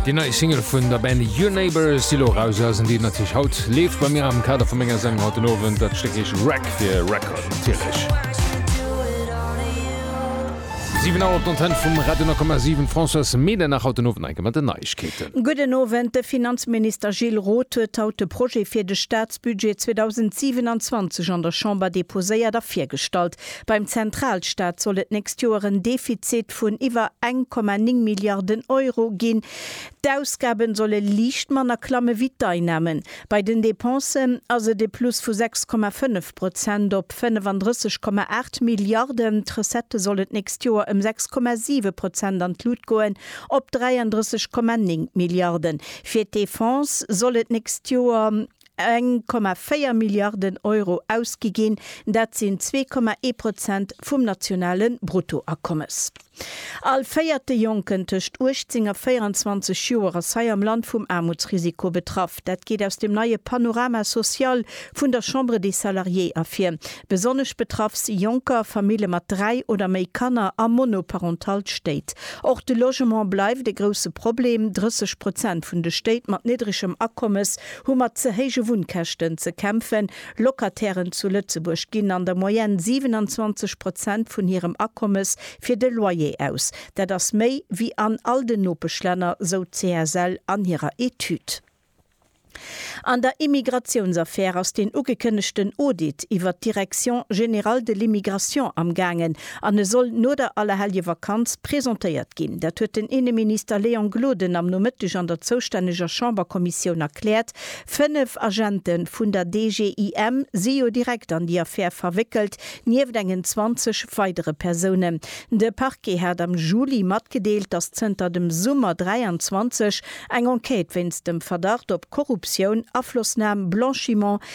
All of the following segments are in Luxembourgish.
Di nei Single vun der Band Your Neighbor Silo rausen, déi natich haut leef bei mir am Kader vu ménger Säng haut den Owend, dat Stéck eich Rack fir Record natierlech. 7 Auer op d'Antenne vum Radio 10,7, Françoise Medernach haut den Owend eng Kéier mat den Neiegkeeten. Gudden Owend, De Finanzminister Gilles Roth huet haut de Projet fir de Staatsbudget 2027 an der Chamber deposéiert a virgestallt. Beim Zentralstaat soll et d'nächst Joer en Defizit vun iwwer 1,9 Milliarden Euro ginn. D'Ausgaben solle liicht manner klamme wéi d'Einnamen. Bei den Dépensen ass et e Plus vu 6,5 Prozent op 35,8 Milliarden. D'Recettë sollen d'nächst Joer ëm 6,7 Prozent an d'Lut goen, op 33,9 Milliarden. Fir d'Defense soll et d'nächst Joer 1,4 Milliarden Euro ausgi ginn, dat sinn 2,1 Prozent vum nationale Bruttoakommes. All véierte Jonken tëscht 18 a 24 Joer ass hei am Land vum Aarmutsrisiko betraff. Dat geet aus dem neie Panorama social vun der Chambre des Salariés ervir. Besonnesch betraff si Jonker, Famille mat dräi oder méi Kanner a monoparental Stéit. Och de Logement bleift e grousse Problem, 30 Prozent vun de Stéit mat niddregem Akommes hu mat ze héije Wunnkäschten ze kämpfen. Locatairen zu Lëtzebuerg ginn an der Moyenne 27 Prozent vun hirem Akommes fir de Loyer aus. Dat ass méi wéi an all den Nopeschlänner, sou d'CSL an hirer Etüd. An der Immigratiounsaffär ass deen ugekënnegten Audit iwwert d'Direction générale de l'immigration amgaangen. An e soll no der Allerhelljevakanz presentéiert ginn. Dat huet den Inneminister Léon Gloden am Nomëtteg an der zoustänneger Chamberkommissioun erkläert. Fënnef Agente vun der DGIM si jo direkt an déi Affär verwéckelt, nieft engen 20 weidere Persounen. De Parquet hat am Juli matgedeelt, datt zënter dem Summer 23 eng Enquête wéinst dem Verdacht op Korruptioun, Aflossnam, Blanchiment,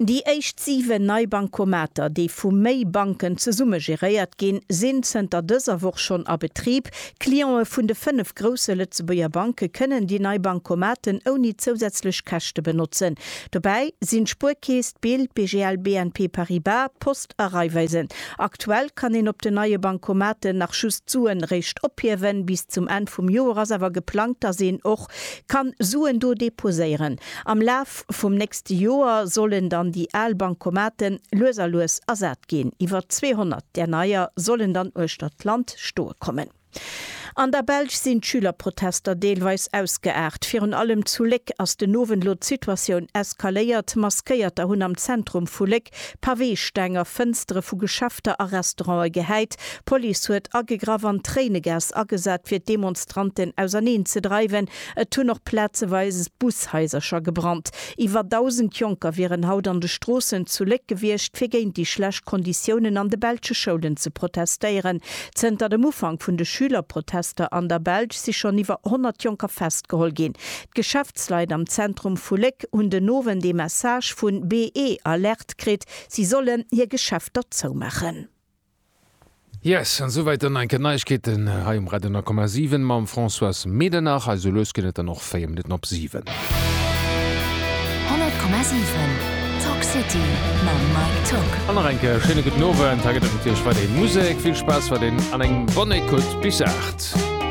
Déi éischt 7 nei Bankomater, déi vu méi Banken zesumme geréiert ginn, sinn zënter dëser Woch schonn a Betrib. Clientë vun de 5 grousse Lëtzebuerger Banke kënnen déi nei Bankomaten ouni zousätzlech Käschte benotzen. Dobäi sinn d'Spuerkeess, d'Bild, BGL, BNP Paribas, d'Post a Raiffeisen. Aktuell kann een op den neie Bankomaten nach just d'Suen réischt ophiewen. Bis zum Enn vum Joer ass awer geplangt, dass een och kann Suen do deposéieren. Am Laf vum nächste Joer sollen dann déi al Bankomate lues a lues ersat ginn. Iwwer 200 där neier sollen dann uechter d'Land stoe kommen. An der Belsch sinn d'Schülerprotester deelweis ausgeaart. Virun allem zu Léck ass den Owend lo d'Situatioun eskaléiert. Maskéierter hunn am Zentrum vu Léck Paweesteng a Fënstere vu Geschäfter a Restaurante gehäit. D'Police huet agegraff an Tréinegas agesat, fir d'Demonstranten auserneen ze dreiwen. Et hunn och plazeweis Bushaisercher gebrannt. Iwwer 1.000 Jonker wieren haut an de Stroossen zu Léck gewiescht, fir géint déi schlecht Konditiounen an de belsche Schoulen ze protestéieren. Zënter dem Ufank vun de Schülerprotester an der Belsch si schonn iwwer 100 Jonker festgeholl ginn. D'Geschäftsleit am Zentrum vu Léck hunn den Owend ee Message vun BE-Alerte kritt, si sollen hir Geschäfter zoumaachen. Yes, an esouwäit dann enke Neiegkeeten hei um Radio 9,7 mam François Medernach. Hei esou lues gëtt et dann och 4 Minutten op 7. 100,7 Talk City mam Mike Tock. An nach enke schéine gudden Owend. Hei gëtt et natierlech weiderhin Musek. Vill Spaass weiderhin an eng bonne Écoute bis 8.